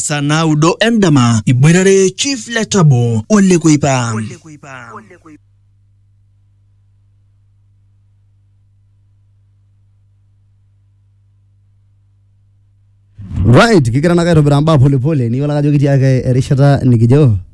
saa naudo endama iboitare chief le tabo ole kuipa Right, kigira nake aitobiraa mbaa polepole niyiolo ake ajo kitii ake erishata nikijo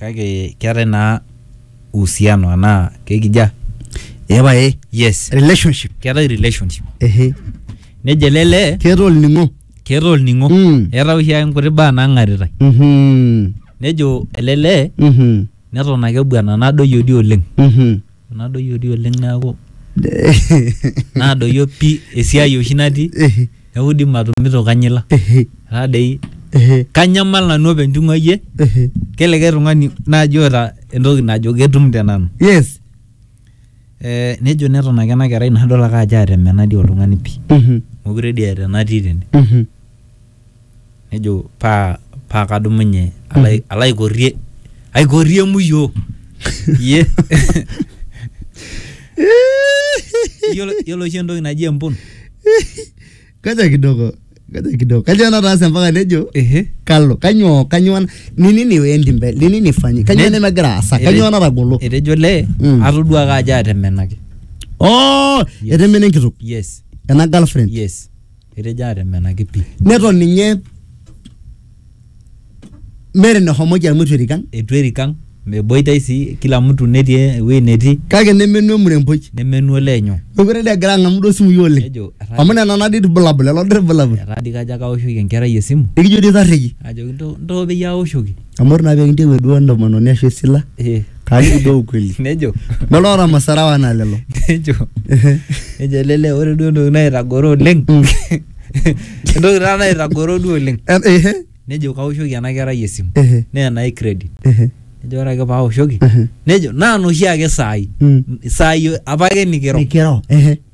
kake keetae naa uhusiano anaa kekija epae yes relationship keetae relationship ehe nejo ele lee keeta olning'o keeta olning'o Mm. eeta oshi ake nkuti baa nang'aritae Mhm. nejo ele lee Mhm. neton ake ebuana nadoyio dii oleng Mhm. nadoyio dii oleng neaku nadoyio pi esiai oshi natii neaku dii matumito kanyila etaa dei kanyamal nanu openy ting'uayie kelikae tung'ani naaji oota entoki najo ketum te nanu yes eh, nejo neton ake ena kerai nadol ake ajo atemena dii oltung'ani pii mokure dii eeta enatii tene nejo paa paa kadumunye alo ai- alo aikorrie aikorrie muyo iye yiolo yiolo oshi entoki naji empun kaja kidogo kaja kidogo kaja nataasa mpaka nejo ehe kalo kanyoo kanyoo na- ni nini endi mbele ni nini fanyi kanyoo Ne- nemegira aasa kanyoo natagolo etejo lee Mm. atoduaka ajo atemenaki oh Yes. etemene enkitok yes ena girlfriend yes Etejo atemenaki pi. Neton ninye meeta enehomoki amu eitu erik ang. Eitu erik ang, meboitae sii kila mtu netii ewuei netii. Kake nemenu emuremboi. Nemenu olee nyoo. Mekure dii egira ang'amu duo isimui oleng. Nejo etaa. Amu nena naa dii ilbulabul, lelo dii ilbulabul. Etaa dii kajo ake aoshoki enkerai esimu. Nikijo dii tarreiki. Ajoki ntoo peyie aoshoki. amu ore naa pee kintieu duo entomononi ashu esila Eh. kaaliki duo ukweli nejo lolo oota masarawa anaa lelo nejo nejo lele ore duo entoki naitagoro oleng Mm. entoki taa naitagoro duo oleng Eh, ehe, nejo kaoshoki ena kerai esimu ehe, naa enai credit ehe, nejo ore ake paoshoki Mhm. nejo naa noshi ake saai Mm. saai apake nikiro nikiro ehe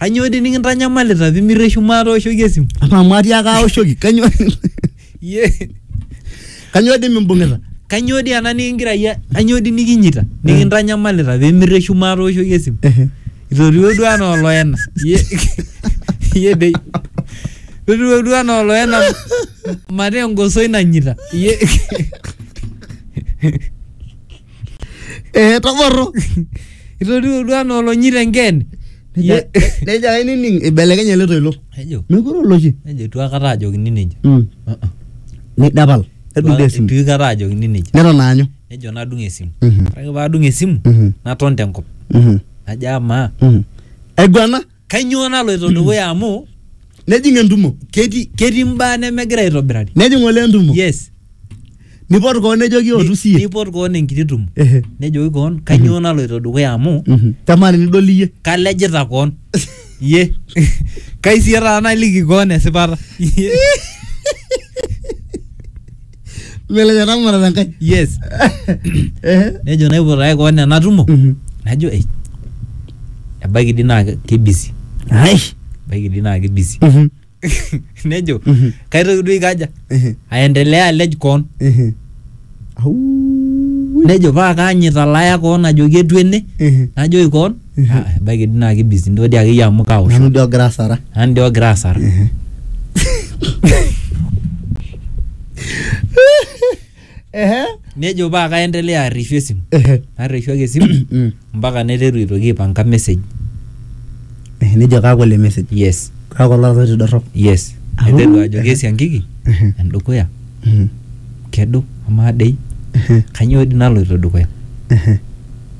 Kanyoo dii nikintanyamalita pimirreshu maatooshoki esimu? Amaa amu atiaaka aoshoki kanyoo Iyie kanyoo dii mimbung'ita? kanyoo dii ena nikingira iyie kanyoo dii nikinyita nikintanyamalita pimirreshu maatooshoki esimu? Ehe. Itoriwuo duo anaa oloena. Iyie iyie dei. Itoriwuo duo anaa oloena mataa engosoi nanyita. Iyie Eh, toborro. Itodua anaa olonyi tengen. Neja neja ainining ibelekenye ele toilo. Ejo, Mekure oloshi. ejo itu akata ajokini nejia. Mm. Uh-uh. Nidapal. Nedung dee esimu. Itu aikata ajokini nejia. Neton aanyu. Nejo nadung esimu. Mhm. Ore ake paadung esimu, Mhm. naton tenkop. Mhm. Najo amaa, Mhm. Aiguana. Kainyoo naloito dukuya amu Nejing entumo. ketii ketii mbaa nemegira aitobirari. Nejing olee entumo. Yes. Nipot koon nejoki ootu siye. Nipot koon enkiti tumo. Ehe. Nejoki koon kainyoo naloito dukuya amu Mhm. Kamaa tenidol iyie. kalejita koon. Iyie. Kai siye taata naliki koon esipata. Iyie. Melenya namara na nkai. yes Eh. nejo naiputaki koon enatumo Mhm. najo ei ebaiki dii naa ke- kebisi Ai. ebaiki dii naa kebisi Mhm. nejo Mhm. kaitoki duo aikaja Eh. aendelea alej koon Eh. Au. nejo paa kaanyita laya koon ajoki etu ene Eh. najoki koon Ah, ebaiki dii naa kibisi ntoo dii akeyie amu kaosho nanu dii ogira asara nanu dii ogira asara ehe nejo paa kaendelea arreshu esimu ehe narreshu ake esimu Mm. mpaka naiteru aitoki aipanga message Eh, nejo kaaku ele message yes kaaku ololoito dorrop yes Au. naiteru ajoki esiankiki Ehe. endukuya Mhm. kedo amaa dei Ehe. kanyoo dii naloito dukuya Ehe.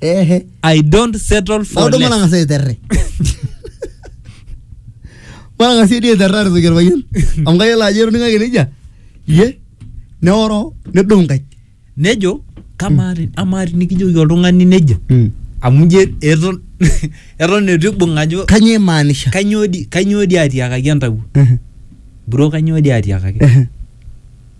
ehe I don't settle for naudo less. matang'asa aiterre matang'asa edi aiterra aretoki orpayian amu kayiolo ajo etoning'aki nejia iye neoro nedou nkaik Nejo kamaa ti- amaa tinikijoki oltung'ani nejo amu nje eton eton eitu ibung ajo kanyoo imaanisha kanyoo di kanyoo di atiakaki entawuo Ehe, bro kanyoo di atiakaki ehe.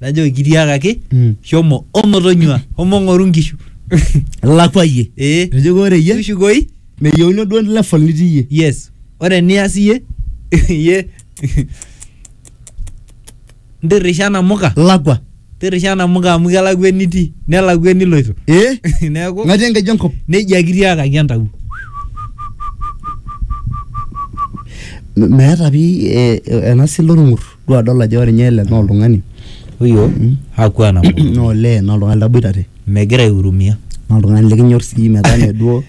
najoki kitiakaki Mm. shomo omotonyua omong'oru nkishu ilakwayie ee ejo ore iyie tushukoi meyieuni duo level nitii iyie yes ore nias iyie iyie ntirrisha namuka lakwa tirrisha namuka amu kelakwa enitii nelakwa eniloito ee neeku ng'atii enkeju enkop nejia kitiakaki entawuo M- meeta pi eh, ena sila orng'ur Duo adol ajo ore ninye ele naa oltung'ani huyo hakuwa na nguvu, naa olee naa oltung'ani laboitare megira aihurumia, naa oltung'ani likinyor sii metaa mee duo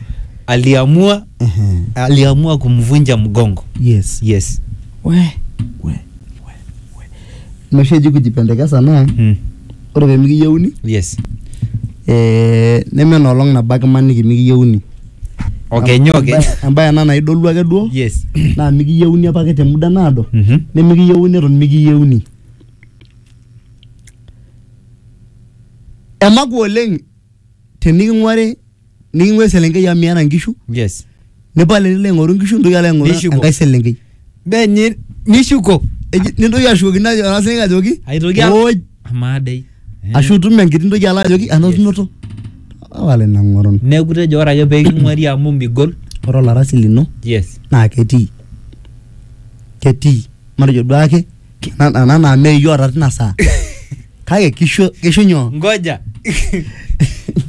aliamua ehe aliamua kumvunja mgongo yes yes we we we we ina oshi eji kujipendekesa naa mm. ore pemikiyieuni yes ee neme enoolong nabo ake imaniki mikiyieuni. okenyu okenyu Embae- embae ena naidolu ake duo yes naa mikiyieuni apake te muda naado Mhm. nemikiyieuni eton mikiyieuni emaku oleng teniking'uari niking'ua eselenkei amu miata nkishu yes nipal enilo aing'oru nkishu nitoki alo aing'oru Nishuko. enkae selenkei Benye nishuko eji- nintoki ashukokino ajo- ena siai ajoki aitoki al- "Oj, amaa dei ashu itum enkiti ntoki alo ajoki anotinoto wale nang'oron neeku tejo ore ake peeking'uari amu migol ore olarasi lino yes naa ketii ketii matejo duake Nana nana meyiota tina saa. Kake kisho kisho nyoo? ngoja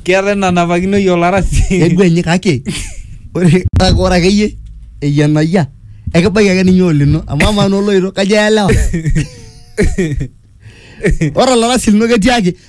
keetae nanapakinoi olarasi Keguenyi kake ore kake ore akeyie eyianayia ekibaiki ake ninye olino amu amaa naa oloito kajo eelewa. Ore olarasi lino ketiaki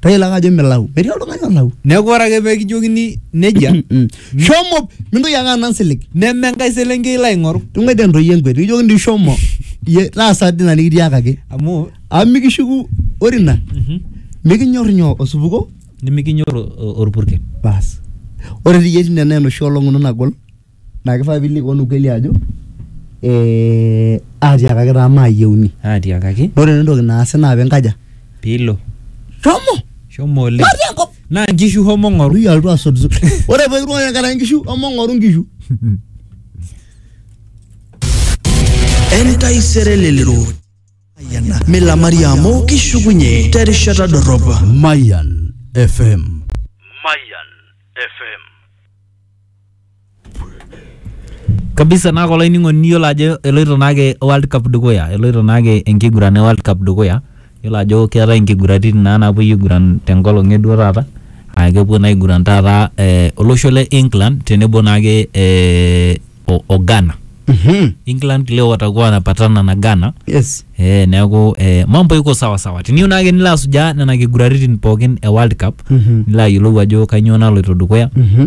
tayiolo ake ajo milau metii oltung'ani olau neeku ore ake pekijokini nejia Mm. shomo mintoki ake anang silig neme enkae selenkei ilo aing'oru tung'oitie ntoyie enkwet nikijoki ndi shomo iyie taasa dina nikitiakaki amu amu mikishuku ore ina mikinyor nyoo osupuko nimikinyor o- o- orpurkel bas ore tiyie tine naa enoshi olong ino nagol naa kifaa piilikuan ukweli ajo ee atiakaki taa maayieuni. atiakaki Naa ore entoki naasi naa piinkaja piilo shomo shomo oleng matii enkop. naa nkishu homo ng'oru Ui alotu asotu. Ore pee kiruai enkaraki nkishu shomo ng'oru nkishu. entaisere lelero milamari amu kishukunye terishata dorrop Mayan FM. Mayan FM. kabisa naa kulo ainining'oni niyiolo ajo eloito naake World Cup dukuya eloito naake enkiguran e World Cup dukuya yiolo ajo keetae inkiguraritin naa napuoi aiguran tenkolong eduo taata aa kepuo naa aiguran taata eh, olosho le England tenebo naake eh, o, o Ghana Mhm. England leo watakuwa wanapatana na Ghana Yes. Eh, neeku eh, mambo iko sawa sawa tiniyieu naake nilo asujaa nena kiguraritin pookin e World Cup Mhm. nilo ayiolou ajo kainyoo naloito dukuya Mhm.